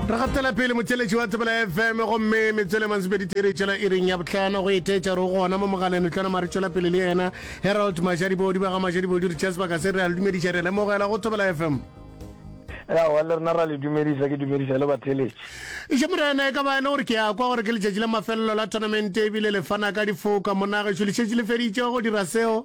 re gatela pele motšeletši wa tsebela fm gomme metswele mansebedi tere tšela e reng ya botlhano go etetša re gona mo mogaleng re tlwana mare tšwela pele le yena herald mašadibodi ba ga mašadibodi re tšea sebaka se re a le dumediša re lemogela go tsebela fm yawa le rena ra le dumediša ke dumediša le batheletši eše morena e ka ba e le gore ke ya kwa gore ke letšatši la mafelelo la tournamente ebile le fana ka difoka monagešo lešetši le feditše go dira seo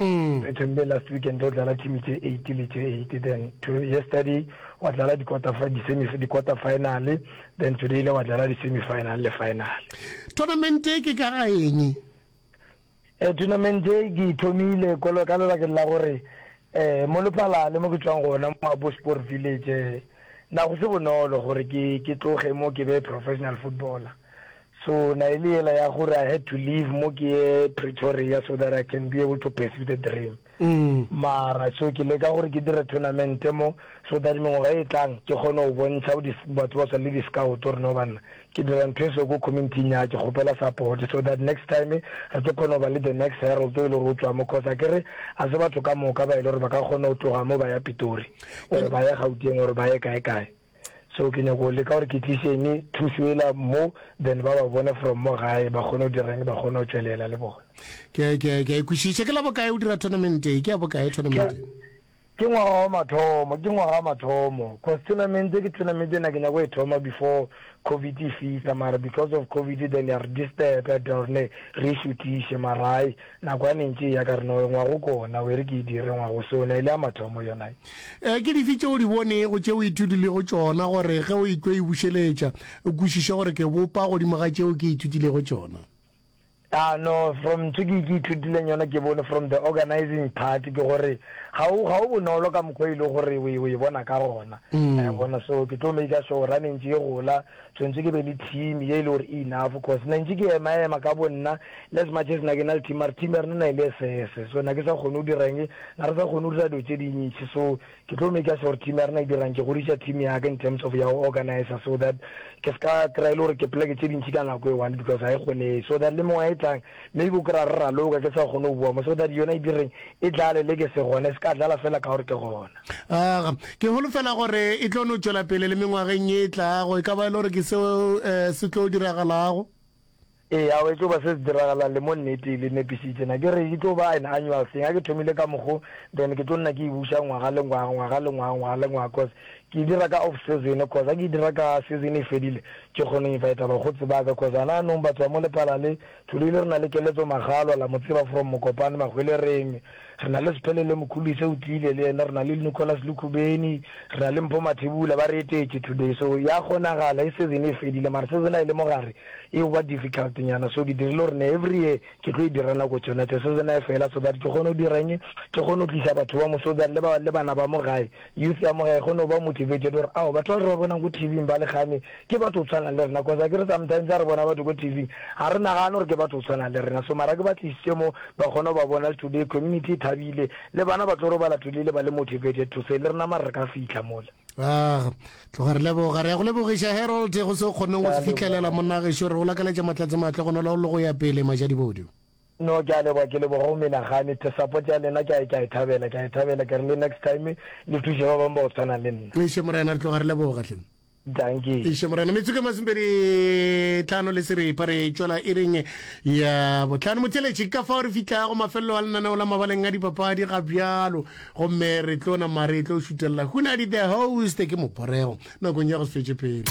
Re thomile last weekend go dlala team tše 8 le tše 8 then to yesterday wa dlala di-quarter final then today le wa dlala di-semi final le final. Tournament e ke ka ga eng? Eh, tournament e ke thomile kolo ka lebakeng la gore eh mo lepalale mo ke tswang gona mo abo sport village eh, na go se bonolo gore ke ke tloge mo ke be professional footballer So na e le yela ya gore I had to leave mo ke ye Pretoria so that I can be able to pursue the dream. Mara so ke leka gore ke dire tournament mo so that mengwaga e tlang ke kgone go bontšha bo batho ba swana le di-scout gore no banna ke dira ntho e so ko community-ing ya ke kgopela support so that next time re tlo kgona go ba le the next herald o e le gore o tswa mo cause a kere a se batho ka moka ba e le gore ba ka kgona go tloga mo ba ya Pitori or ba ya Gauteng or ba ye kae kae. So ke nyako leka gore ke tliše eng thušo ela mo then ba ba bone from mo gae ba kgone go direng ba kgone go tšwelela le bona. Ke a ke a ke a e kwešiša. Ke la bokae o dira tournament e? Ke ya bokae tournament e? Ke ngwaga wa mathomo, ke ngwaga wa mathomo cause tournament ke tournament e na ke nyako e thoma before Covid e fihla mara because of Covid then ya re disturb ya dira gore ne re e šuthiše mara hai Nako ya mentši e ya ka rena, o engwa go kona, o e re ke e dire, engwa go sona, e le ya mathomo yona ye. Ee, ke dife tše o di bonego, tše o ithutilego tšona, gore ge o etlo e bušeletša, o kwešiše gore ke bopa godimo ga tšeo ke ithutilego tšona? A no, from ntho ke, ke ithutileng yona, ke bone from the organising part, ke gore ga o, ga o bonolo ka mokgwa e lego gore o e, o e bona ka gona. Wa e bona? So ke tlo maker sure gore ga mentši e gola, Tshwentse ke be le team ye e le gore e enough cause na ntše ke ema ema ka bo nna le as much as na ke na le team mare team ya rena na e le esese so na ke sa kgone go dira eng na re sa kgone go dira dilo tše dintši so ke tlo maker sure gore team ya rena e dirang ke godiša team ya ka in terms of ya go organizer so that ke se ka kry-a e le gore ke pleke tše dintši ka nako e one because ga e kgonege so that le mengwaga e tlang Maybe o kry-a re raloka, ke sa kgone go bua mo, so that yona e direng e tlale le ke se gona, e se ka tlala fela ka gore ke gona. Aga, ke holofela gore e tlo no tšwela pele le mengwageng ye e tlago, e ka ba e le gore ke seo um se tlo diragalago. Ee, awa e tlo ba se se diragalang, le mo nnete e le nepisitse na, ke re e tlo ba an annual thing, ga ke thomile ka mokgo, then ke tlo nna ke e buša ngwaga le ngwaga, ngwaga le ngwaga, ngwaga le ngwaga, cos Ke e dira ka off season cos ha ke e dira ka season e fedile ke kgona go invita bakgotsi ba ka cos hana anong batho ba mo lepala le Thulile re na le Keletso Makgalwa la mo tseba from Mokopane Mahwelereng re na le Sphelele Mokhulise o tlile le yena re na le Nicholas Lekhubeni re na le Mpho Mathebula ba re etetše today so ya kgonagala e season e fedile mara season ha e le mo gare e ba difficult nyana so ke dirile gore ne every year ke tlo e dira nako tšona tše season ha e fela so that ke kgone go dira eng ke kgone go tlisa batho ba mo so that le ba le bana ba mo gae Youth ya mo gae e kgona go ba motivated gore ao batho ba re ba bonang ko TV-ing ba le kgame ke batho go tshwana le rena cause akere sometimes ha re bona batho ko TV-ing ga re nagane gore ke batho go tshwana le rena so mara ke ba tlisitse mo ba kgona go ba bona le today community e thabile le bana ba tlo robala today le ba le motivated to say le rena mare re ka fitlha mola Ah, tloga re leboga re ya go lebogiša herold go se o kgoneng go se fitlhelela monnageso re go lakaletša matlatse matle go nola o le go ya pele majadibodi No ke a leboga ke leboga go menagane the support ya lena ke a ke a e thabela ke a e thabela ke re le next time le thushe ba bang ba go tshwana le nna. Eiše morena re tloga re leboga hle. Dankie. Eiše morena metsoko e masomepedi tlhano le seripa re tšwela iring ya botlhano motheletši ka fao re fihlago mafelelo a lenaneo la mabaleng a dipapadi ga bjalo gomme re tlo nama re tlo šutelela hunadi the host ke moporego nakong ya go se fetše pelo.